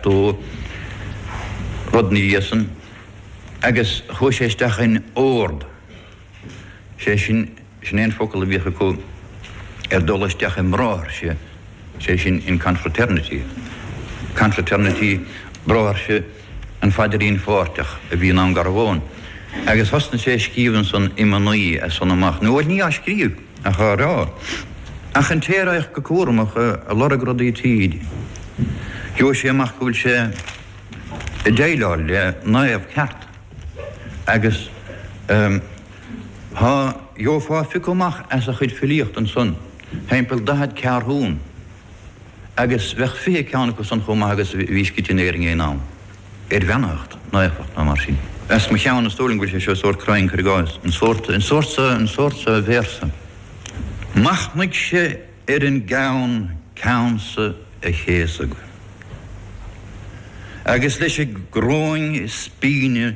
do rud ina dhiaidh san agus chuaigh sé isteach in ord, sé sin, sin é an focal a bhíodh acu ar dul isteach i mbráithre, sé sin in confraternity, confraternity, bráithre, an Phaidrín Pháirteach a bhí i nDún Garbhán agus thosnaigh sé ag scríobh ansan iomanna as san amach, nó bhuel ní á scríobh. a rá, ach an té a raghadh go cúramach ag lorg rudaí tríd, gheobhadh sé amach go bhfuil sé ag déileáil le naomh ceart agus gheofá piocadh amach as a chuid filíochta ansan, timpeall daichead ceathrún. Agus bheadh fiche ceann acu san chomh maith agus a bhí scrite in Éirinn aon am. Ar bheannacht nó éifeacht nó mar sin. As mo cheann, is dóigh liom go bhfuil sé seo sórt cruinn, cuir i gcás. An sórt, an sórt seo, an sórt seo véarsa. Machnaigh sé ar an gceann, ceann seo a chéasadh. Agus leis an gcoróin spíne.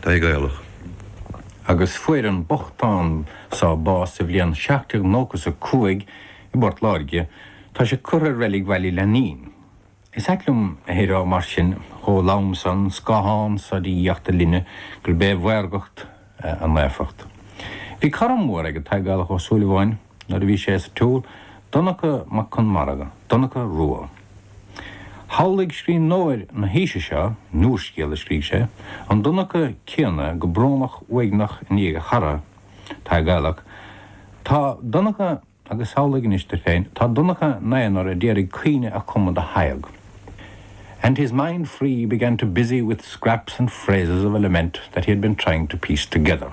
Tadhg Gaelach agus fuair an bochtán so bás sa bhliain seacht déag nócha is a cúig i bPort Láirge. Tá sé curtha i reilig Bhaile Laithnín. Is ait liom a shaothar mar sin chomh lom san, scáthán sa diagacht dar linne gurb é a mhaorgacht a naofacht. Bhí cara mór ag Tadhg Gaelach Ó Súilleabháin, Nuair a bhí sé sa tsaol, Donncha Mac Conmara, Donncha Rua. Shamhlaigh scríbhneoir na haoise seo in úrscéal a scrígh sé, an Donncha céanna go brónach uaigneach i ndiaidh a chara, Tadhg Gaelach, Tá Donncha, agus samhlaigh anois duit féin, tá Donncha ina aonar a d'iarraidh caoineadh a chumadh do Thadhg, and his mind free began to busy with scraps and phrases of a lament that he had been trying to piece together.